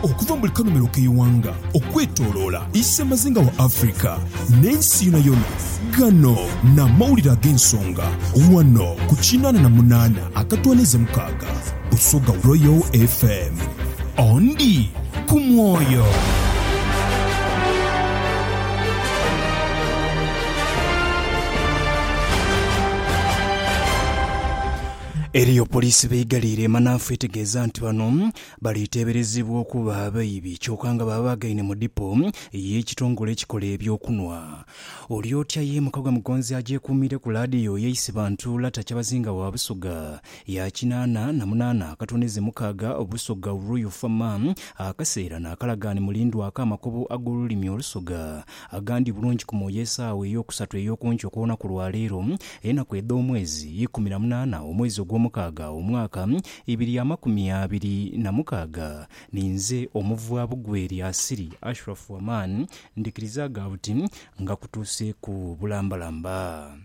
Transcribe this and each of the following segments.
Okuva mu buli kanhumilo k'eighanga okwetoloola Isemazinga wa Africa n'ensi yonayona, ghano n'amawulire ag'ensonga ghano ku kinaana na munaana akatwaniiza mukaaga Busoga Royal FM. Ondi ku mwoyo. Eriyo poliisi b'eighaliire emanhafu etegeeza nti bano bali teeberezebwa okuba abaibi kyoka nga baabagaine mu dipo y'ekitongole ekikola eby'okunwa. Oli otya ye mukago Mugonzi agyekuumiire ku laadiyo y'eisi bantu Lata Kyabazinga wa Busoga ya kinaana na munaana akatooneze mukaaga Busoga Royal Fa Ma akaseera n'akalagaane mulindwa ak'amakobo ag'olulimi Olusoga Agandi bulungi ku mwoyo esaawa ey'okusatu ey'oku nkyo okw'olunaku lwa leero, enaku edh'omwezi ikumi na munaana omwezi ogw'omukaaga omwaka ibiri amakumi abiri na mukaaga. Ninze Omuvwabugweri Asiri Ashrafu Aman, ndhikiriza ghabuti nga kutuuseeku bulambalamba.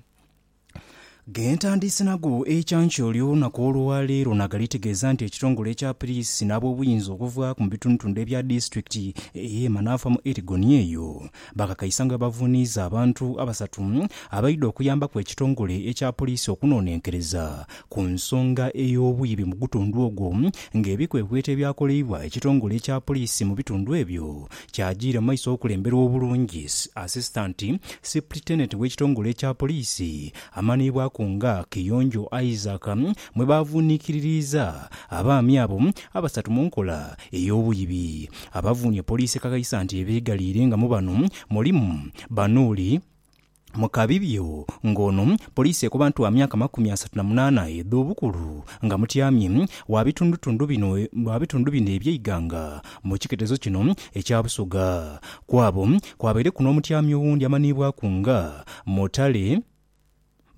Gentandiise nago ekyankya olunaku olwa leero nagali tegeeza nti ekitongole ekya piriisi n'abobuyinza okuva mu bitundutundu ebya disitulikiti eye Manaafa mu Elgon eyo bakakaisa nga bwebavuniiza abantu abasatu abaidha okuyambaku ekitongole ekya puriisi okunonenkereza ku nsonga ey'obwibi mugutundu ogwo nga ebikwekweto ebyakoleibwa ekitongole ekya puriisi mu bitundu ebyo Kyajiira mu maiso okulemberwa obulungis Assistant Sipritendent w'ekitongole ekya Poliisi amanhiibwaku nga Kiyonjo Isaac mwe baavuunikiririiza abaami abo abasatu mu nkola ey'obwibi. Abavuunye Poliisi ekakhaisa nti ebeegaliire nga mu bano mulimu Banuuli, Mu kabibyo nga ono, poliisi ekoba nti wa myaka makumi asatu na munaana edh'obukulu nga mutyamye wa bitundutundu bino wa bitundu bino eby'eighanga mu kiketezo kino ekya Busoga. Ku abo kwabaireku n'omutyami owundi amanhiibwaku nga Mutale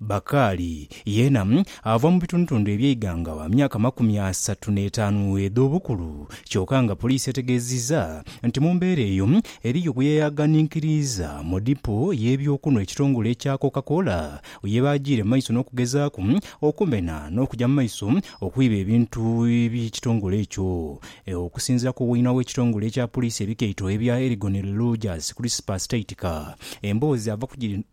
Bakali yeena ava mu bitundutundu eby'eighanga wa myaka makumi asatu n'etaanu edh'obukulu kyoka nga poliisi etegeezizza nti mu mbeera eyo Eriyo gwe yaghanhikiriiza mu dipo y'eby'okunhwa ekitongole ekya Coca Cola ye baajiire mu maiso n'okugezaaku okumena n'okuja mu maiso okwiba ebintu eby'ekitongole ekyo. Okusinziira ku weinha w'ekitongole ekya poliisi ebikaito ebya Elgon Rogers Crispus Taitika, emboozi ava ku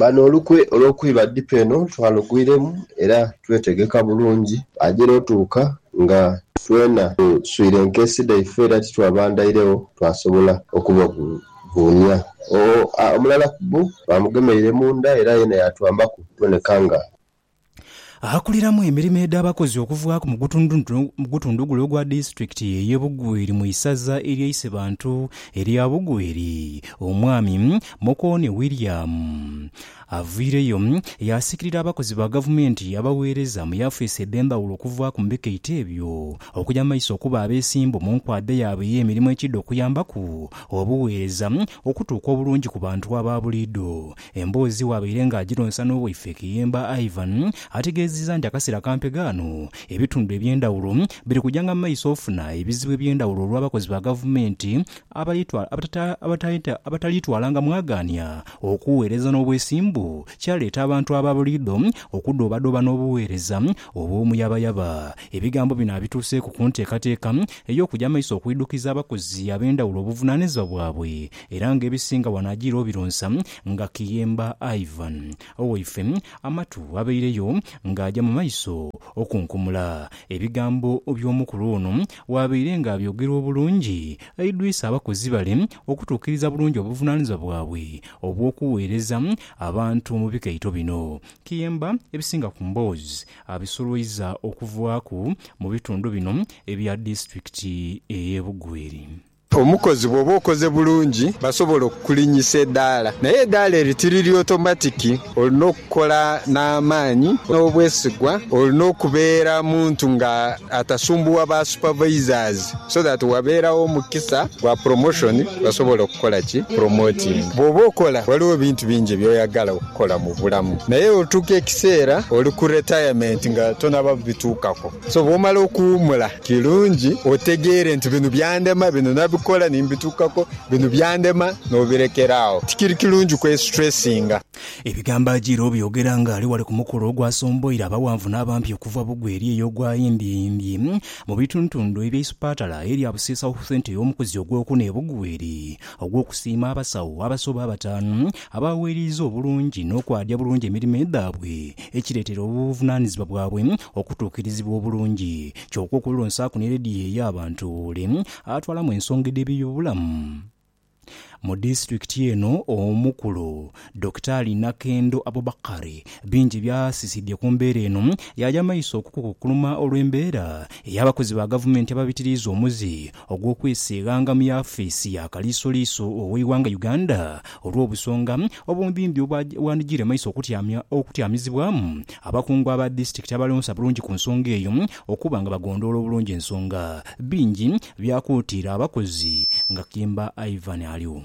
Bano olukwe olw'okwiba dipo eno twalugwiremu era twetegeka bulungi. Agira otuuka nga twena tuswire enkesi dhaife era titwabandairegho twasobola okubavuunia. Omulala ku bbo baamugemeire munda era yena yaatwambaku okuboneka nga. Akuliramu emirimo edh'abakozi okuvaaku mu gutundu gule ogwa disitulikiti eye Bugweri mu isaza erye Isebantu erya Bugweri, Omwami Mukoone William avaireyo yaasikirira abakozi ba gavumenti abaweereza mu yafeesi edh'endhaghulo okuvaaku mu bikaito ebyo okuja mu maiso okuba abeesimbu mu nkwadha yaabwe ey'emirimo ekiidha okuyambaku obuweereza okutuuka obulungi ku bantu aba buliidho. Emboozi bw'abaire nga agironsa n'owaife Kiyemba Ivan, ategeezizza nti akaseera kampe ghano, ebitundu eby'endhawulo biri kujanga mu maiso ofuna ebizibu eby'endhawulo olw'abakozi ba gavumenti abataliitwalanga mwagaania okuweereza n'obwesimbu kyaleeta abantu aba buliidho okudoobadooba n'obuweereza obw'omuyabayaba. Ebigambo bino abituuseeku ku nteekateeka ey'okuja maiso okwidhukiza abakozi ab'endhawulo obuvunaanizibwa bwabwe Era nga ebisinga wano ajiire obironsa nga Kiyemba Ivan. Owaife Amatu abaireyo nga aja mu maiso okunkumula. Ebigambo by'omukulu ono waabaire nga abyogera obulungi, aidwisa abakozi bale okutuukiriza bulungi obuvunanizibwa bwabwe obw'okuweereza abantu mu bikaito bino. Kiyemba ebisinga ku mboozi abisolwaiza okuvaaku mu bitundu bino ebya disitulikiti ey'e Bugweri. Omukozi bw'oba okoze bulungi basobola okukulinnyisa edaala. Naye edaala eri tiriri otomatiki. Olina okukola n'amaani n'obwesigwa. Olina okubeera muntu nga atasumbuwa ba supervisors so that wabeerawo omukisa gwa promotion basobola okukukola ki? Promotinga. Bw'oba okola waliwo ebintu bingi by'oyagala okukola mu bulamu naye otuuka ekiseera oli ku retirement nga tonaba bituukako. So bw'omala okuwuumula, kirungi otegeere nti bino byandema, bino nabikola ni mbituukaku, bino byandema n'obirekera agho. Tikiri kirungi kwesitresinga. Ebigambo Ajiira obyogera ng'ali ghale ku mukolo ogwasomboire abaghanvu n'abampi okuva Bugwe eri eyo ogwa Yimbyimbyi mu bitundutundu ebya Isupatala erya Busiisa Health Centre ey'omukuzi ogw'okuna e Bugwe eri ogw'okusiima abasawo abasoba abataanu Abaaweeraiza obulungi n'okwaadya bulungi emirimo dhaabwe, ekireetera obuvunaanizibwa bwabwe okutuukirizibwa obulungi. Kyoka okwelonsaaku ni leediyo ey'abantu ole atwalamu ensonga edh'eby'obulamu mu disitulikiti eno omukulu, Dokitaali Nakendo Abubakar bingi by'asisidhye ku mbeera eno yaaya maiso okukukukuluma olw'embeera ey'abakozi ba gavumenti ababitiriiza omuzi ogw'okwesiighanga mu yafeesi ya kaliisoliiso ow'eighanga Uganda olw'obusonga obumbimbi obwandidhire mu maiso okutyamizibwamu abakungu aba disitulikiti abalonsa bulungi ku nsonga eyo okuba nga bagondhoola obulungi ensonga. Bingi byakuutiira abakozi nga Kimba Ivan Aliu.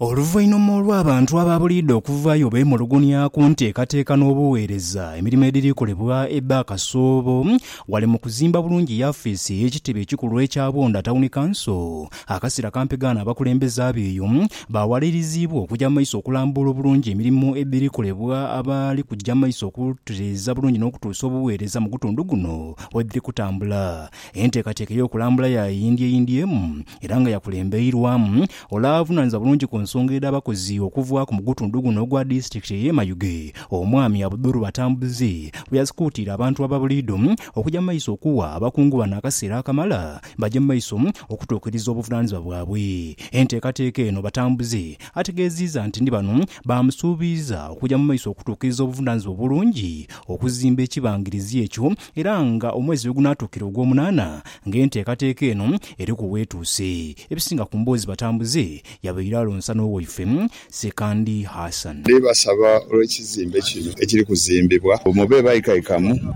Oluvainhuma olw'abantu abaabuliidha okuvaayo beemulugunya ku nteekateeka n'obugheereza emirimo edhiri kolebwa Ebba Kasoobo ghale mu kuzimba bulungi yafiisi ey'ekitebe ekikulu ekya Bunda Town Council Akasira kampegaano abakulembeze ab'eyo baawaliriziibwa okuja mu maiso okulambuula obulungi emirimo edhiri kolebwa abali kuja mu maiso okutereeza bulungi n'okutuusa obugheereza mu gutundu guno wedhiri kutambula. Enteekateeka ey'okulambula yaayindyeeyindyeemu era nga yakulembeirwamu ole avunaanizibwa bulungi ku nsonga edh'abakozi okuvaaku mu gutundu guno ogwa disitulikiti ey'e Mayuge, Omwami Abdul Batambuze bwe yasikuutiire abantu ababuliidho okuja mu maiso okuwa abakungu bano akaseera akamala baje mu maiso okutuukiriza obuvunaanizibwa bwabwe. Enteekateeka eno batambuze. Ategeeziiza nti ni bano baamusuubiiza okuja mu maiso okutuukiriza obuvunaanizibwa obulungi okuzimba ekibangirizi ekyo era nga omwezi lwe gunaatuukira ogwomunaana nga enteekateeka eno eri ku weetuuse. Ebisinga ku mboozi batambuze yabaire alonsa n'owaife Sekandi Hassan. Ndi basaba olw'ekizimbe kino ekiri kuzimbibwa mbu mube baikaikamu,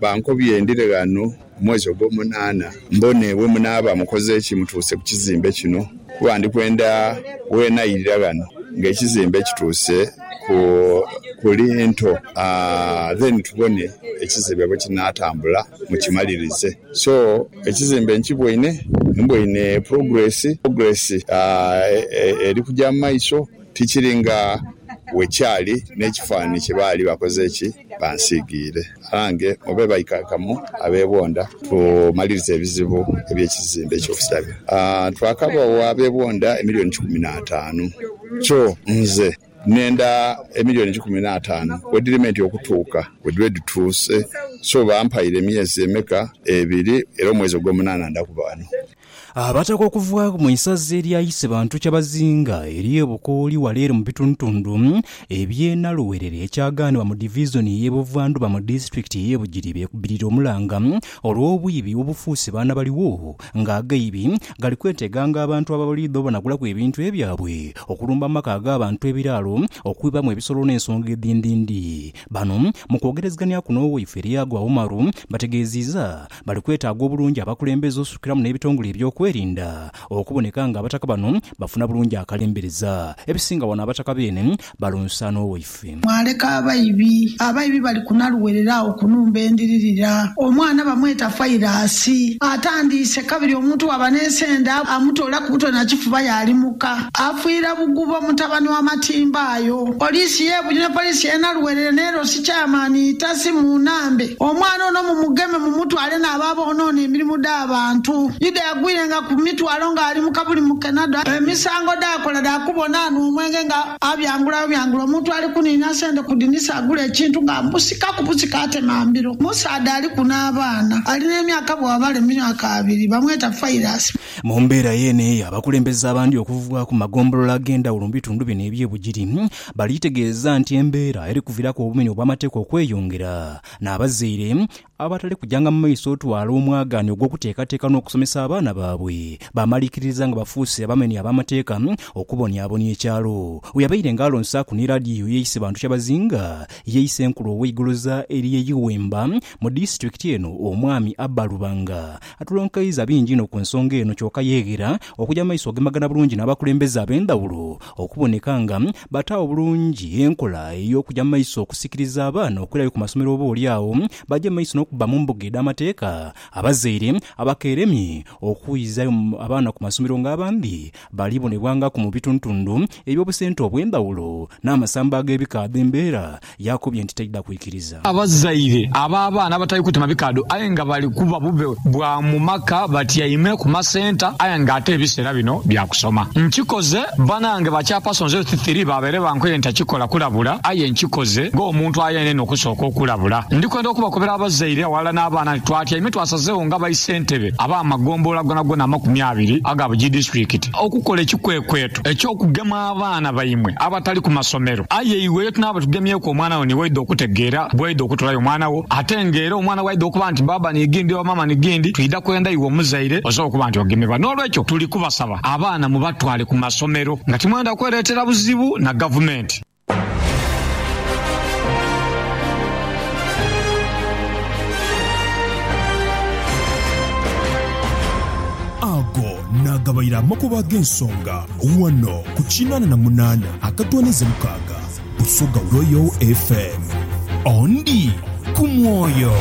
bankobye ndire ghano Mu mwezi ogw'omunaana, mbone bwe munaaba mukoze ki mutuuse ku kizimbe kino, kuba ndi kwenda weenairira ghano ng'ekizimbe kituuse ku linto, then tubone ekizimbe bwe kinaatambula mukimalirize. So, ekizimbe nkiboine, mboine progress, progress eri kuja mu maiso. Tikiri nga bwe kyali n'ekifaananhi kye baali bakoze ki? Bansiigiire. Abange, mube baikaikamu abebonda. Tumaliriza ebizibu eby'ekizimbe eky'okusabira. Twakabagho abebonda emilioni kikumi n'ataanu. Kyo nze nenda emilioni kikumi n'ataanu we dhiri menti okutuuka we dhibe dhituuse. So bampaire emyezi emeka? Ebiri, era omwezi ogw'omunaana nda kuba ghano. Abataka okuva mu isaza erya Isebantu Kyabazinga ery'e Bukooli wala ere mu bitundutundu eby'e Naluwerere ekyagaanibwa mu Divizoni ey'e Buvandhuba mu Disitulikiti ey'e Bugiri beekubirire omulanga olw'obwibi obufuuse baana baligho nga agaibi gali kweteeganga abantu ababaliidha obanagulaku ebintu ebyabwe, okulumba mu maka ag'abantu ebiraalo, okwibamu ebisolo n'ensonga edhindhindhi. Bano mu kwogerezegania kuno owaifeire Yaguha Umaru bategeeziiza Bali kwetaaga obulungi abakulembeze osukiramu n'ebitongole eby'okwerinda okuboneka nga abataka bano bafuna bulungi akalembereza. Ebisinga wano abataka beene balonsa n'owaife. Mwaleka abaibi. Abaibi bali kunaluwerera agho kunumba endiririra. Omwana bamweta Fairasi. Atandiise kabiri omuntu waba n'esende amutoola kubutwe na kifuba yalimuka. Afiira bugubo mutabani wa matimba ayo. Poliisi y'e Budyo ne poliisi y'e Naluwerere n'erosi Chairman Itasi Munambe Omwana ono mumugeme, mumutwale n'abo aboonoona emirimu dh'abantu. Yuda yagwirenga ku mitwalo ng'ali mu kabuli mu Kenada. Emisango dh'akola dha kubona anhwa omwenge nga abyangula bubyangula. Omuntu ali kuniina sente ku dinisa agule ekintu nga amusika ku busika atema mbiro. Omusaadha aliku n'abaana ali n'emyaka bw'abala emyaka abiri bamweta Fairasi. Mu mbeera yeene eyo, abakulembeze abandi okuva ku magombolola ag'endhawulo mu bitundu bino eby'e Bugiri Baliitegeeza nti embeera eri kuviraku obumenyi obw'amateeka okweyongera, n'abazaire abatali kujanga mu maiso otwala omwagaanya ogw'okuteekateeka n'okusomesa abaana baabwe, baamaliikiririza nga bafuuse abamenyi ab'amateeka okubonyabonya ekyalo. We yabaire nga alonsaaku ni laadiyo ye Isebantu Kyabazinga, ye Isenkulu ow'eigoloza erye Iwemba mu disitulikiti eno, Omwami Abba Lubanga, atulonkeiza bingi inho ku nsonga eno kyoka yeeghera okuja mu maiso ogemagana bulungi n'abakulembeze ab'endhawulo Okuboneka nga bataagho bulungi enkola ey'okuja mu maiso okusikiriza abaana okwirayo ku masomero oboolyawo baje mu maiso n'okubba mu mbuga edh'amateeka, abazaire abakeeremye okwizaayo abaana ku masomero nga abandhi bali bonebwangaku mu bitundhutundhu eby'obusente obw'endhawulo n'amasamba ag'ebika adh'embeera Yaakubye nti taidha kwikiriza. Abazaire ab'abaana abatali kutema bikaadho aye nga bali kuba bube bwa mu maka batyaime ku masenta aye nga ate ebiseera bino bya kusoma. Nkikoze banange ba Chairpersons Health Three baabaire bankoye ntakikola kulabula aye nkikoze ng'omuntu ayenenha okusooka okulabula. Ndi kwenda okubakobera abazaire aghalala n'abaana nti twatyaime twasazegho nga baisentebe ab'amagombolola gonagona amakumi abiri aga buli disitulikiti okukola ekikwekweto eky'okugema abaana baimwe abatali ku masomero. Aye iwe ye tunaaba tugemyeku omwana wo ni waidha okutegeera bw'oidha okutolayo omwana wo. Ate ng'era omwana bw'aidha okuba nti baaba ni ghindi oba maama ni ghindi, twidha kwenda iwe omuzaire osobole okuba nti ogemebwa. N'olwekyo tuli kubasaba abaana mubatwale ku masomero nga timwenda kwereetera buzibu na Gavumenti. Naagabaire amakubo ag'ensonga ghano ku kinaana na munaana akatwaniza mukaaga Busoga Royal FM. Ondi ku mwoyo.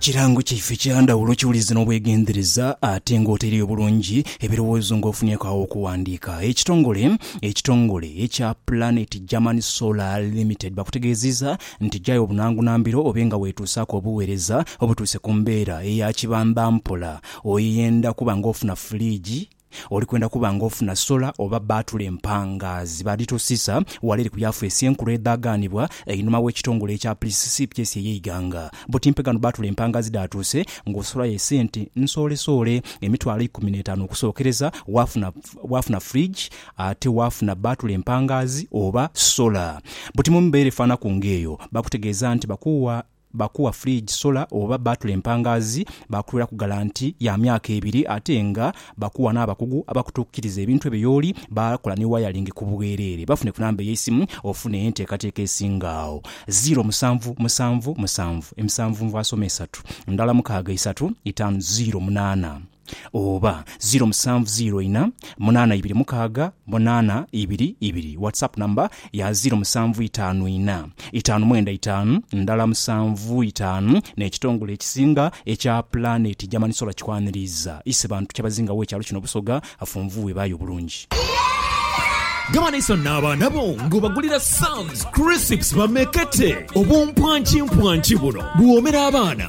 Kirango kyaife kya ndhawulo kiwulize n'obwegendereza ate ng'otereyo bulungi ebirowoozo ng'ofunyeeku agho okuwandiika. Ekitongole ekitongole ekya Planet German Solar Limited bakutegeezizza nti gyayo obunangunambiro obe nga weetuusaaku obuweereza obutuuse ku mbeera eya kibambampola. Oyenda kuba ng'ofuna fuliigi, Oli kwenda kuba ng'ofuna sola oba bbaatule empangaazi baadhitusiisa wala eri ku Yafeesi enkulu edhaaganibwa einhuma w'ekitongole ekya Pulisiisipyesi ey'eighanga. Buti mpe ghano bbaatule empangaazi dhaatuuse ng'osola ye sente nsoolesoole emitwalo eikumi n'etaanu okusookereza, waafuna waafuna fridge ate waafuna bbaatule empangaazi oba sola. Buti mu mbeera efaanaku ng'eyo, bakutegeeza nti bakuwa Baakuwa fridge, solar oba baatula empangaazi, baakuweraku galanti ya myaka ebiri ate nga baakuwa n'abakugu abakutuukiriza ebintu ebyo y'oli, baakola ni wayalingi ku bwereere. Bafune ku namba ey'eisimu ofune enteekateeka esinga agho. Ziro musanvu musanvu musanvu emisanvunvu asoma esatu ndala mukaaga isatu itaanu ziro munaana. oba ziro musanvu ziro ina munana ibiri mukaaga munana ibiri ibiri WhatsApp number ya ziro musanvu itaanu ina itaanu mwenda itaanu ndala musanvu itaanu N'ekitongole ekisinga ekya Planet German Solar kikwaniriiza ise bantu kyabazingawo ekyalo kino Busoga Afunvu webaye obulungi. Gaba n'esanhu n'abaana bo ng'obagulira Sam's Crisps bamekete. Obumpwankimpwanki buno buwoomera abaana